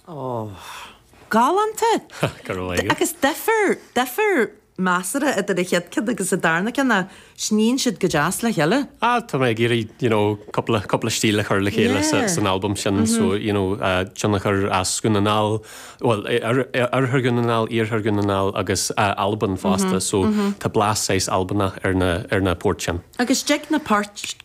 Oh. Galánta! Go raibh maith agat. Agus duifear, duifear measartha idir an chéad ceann agus an darna ceann ach sníonn siad go deas le chéile. Ah, tá mé ag iarraidh, you know, cúpla, cúpla stíl a chur le chéile sa, san albam sin so, you know, tionchar as Dhún na nGall, bhuel, oirthear Dhún na nGall, iarthar Dhún na nGall agus Albain fosta so tá blas saghas Albanach ar na, ar na poirt sin. Agus tá fiú na poirt.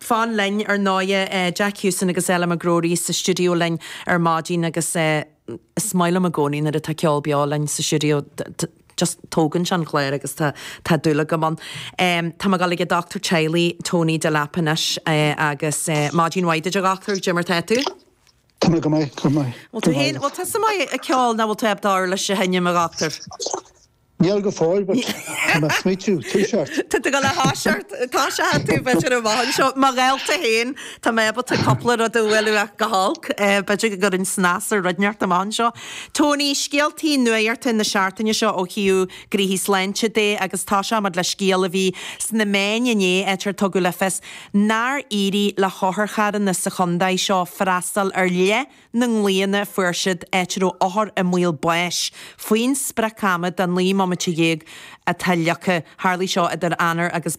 fan linn, ar ndóighe. Jack Houston agus Ella McGrory sa stiúideo linn ar maidin agus is maith liom i gcónaí nuair atá ceol beo linn sa stiúideo, just tógann sé an clár agus tá dúil agam ann. Tá muid ag dul chuig an dochtúir teaghlaigh, Tony Delap, anois agus maidin mhaith duit, a dhochtúir, cad é mar tá tú? Tá mé go maith, go maith. Bhuel, tú fhéin, bhuel, tusa maith ag ceol, nach bhfuil tú? Ab fhearr leat a sheinm, a dhochtúir? Níl go fóill, but tá mé ag smaoitiú toiseacht. Tá tú ag gabháil a thoiseacht, tá sé thar tú, b'fhéidir amach anseo. Mo dhálta fhéin, tá mé ábalta cúpla rud a bhualadh amach go holc, b'fhéidir go gcuirfinn snas ar roinnt amach anseo. Tony, scéaltaí nuachta na seachtaine seo ó thaobh cúrsaí sláinte de agus toiseoidh muid le scéal a bhí sna meáin inné áit ar tugadh le fios nár éirigh le hotharcharranna sa chontae seo freastal ar leith na nglaonna a fuair siad áit a raibh othair i mbaol báis faoin sprioc-ama de naoi mbomaite dhéag atá leagtha. Tharlaigh seo idir Eanáir agus.